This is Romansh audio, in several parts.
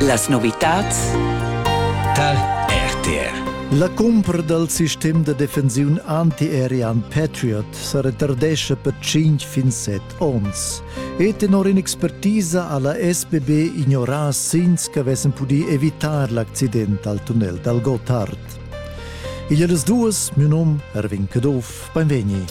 Las novitads tar RTR. La cumpra dal sistem da defensiun anti-aerian Patriot sa retardescha per 5 fin 7 onns. E tenor in'expertisa ha la SBB ignorà signs che avessem pudì evitar l'accident al tunnel dal Gotthard. Igl das duas, mio nom Erwin Caduff, beinvegni.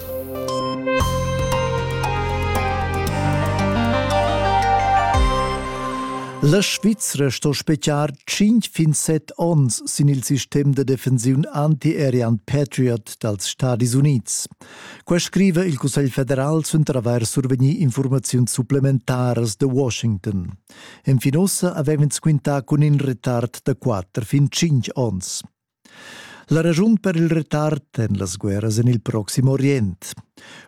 La Svizra sto speciar 5 fin 7 onns sin il sistem de defensiun anti-Arian Patriot dals Stadis Unids. Qua scrive il Cussegl federal suenter avair survegnì informaziuns supplementaras de Washington. Enfin ussa avev'ins quintà cun in retard da quatter fin tschintg onns. La raschun per il retard en las guerras en il Proxim Orient.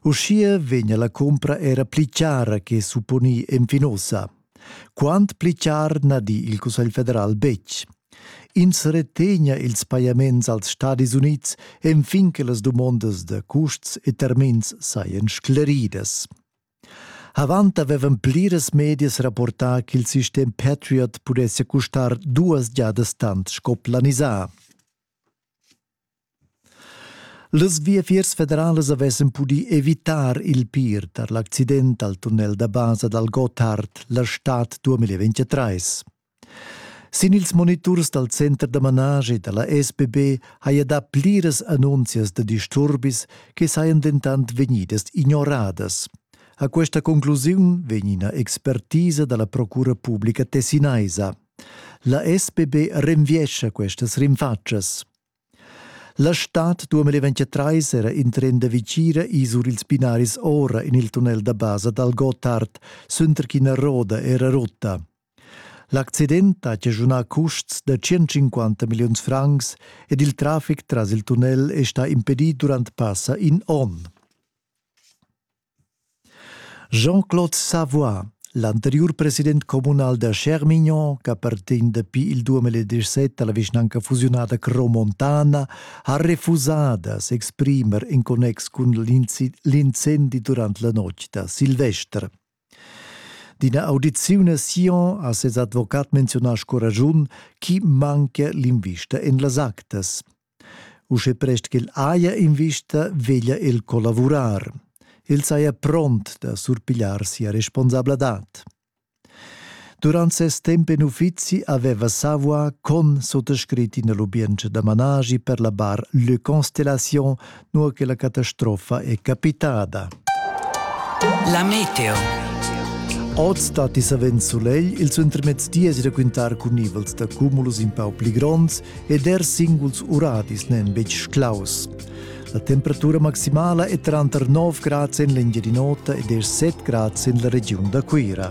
Uschia vegnia la cumpra era pli chara che supponì enfin ussa. Quant pli char na di il Cussegl federal betg. Ins retegna ils pajaments als Stadis Unids enfin che las dumondas da custs e termins sajan scleridas. Avant avevan pliras medias rapportà ch'il sistem Patriot pudessia custar duas giadas tant sco planisà. Las viafiers federalas avessan pudì evitar il pir tar l'accident al tunnel da basa dal Gotthard la stad 2023. Sin ils moniturs dal center da managi da la SBB haja dà pliras annunzias da disturbis che sajan dentant vegnidas ignoradas. A questa conclusiun vegn ina expertisa da la procura publica tessinaisa. La SBB renviescha questas rinfatschas. La stad 2023 era in tren da vicira isur ils binaris ora en il tunnel da basa dal Gotthard, suenter ch'ina roda era rutta. L'accident ha chaschunà custs da 150 milliuns francs ed il traffic tras il tunnel è stà impedì durant passa in onn. Jean-Claude Savoy, l'anteriur president communal da Schermignon, ch'appartegn dapi il 2017 alla vischnanca fusiunada Cromontana, ha refusà da s'exprimer in connex cun l'incendi durant la notg da Silvester. D'ina audiziun a Sion ha ses advocat menziunà sco ragiun ch'i manchia l'invista en las actas. Uschè prest ch'el haja invista veglia el collavurar. El saja pront da surpigliar sia responsabladad. Durant ses temp en uffizi aveva Savoie con sottoscrit ina lubientscha da managi per la bar Le Constellation nua che la catastrofa è capitada. La meteo. Oz datti savens sulegl, ils intermezs dies raquintar cun nivels da cumulus in pau pli gronds ed er singuls uradis n'èn betg claus. La temperatura maximala è tranter 9 grads en l'Engiadin'Ota ed er 7 grads en la regiun da Cuira.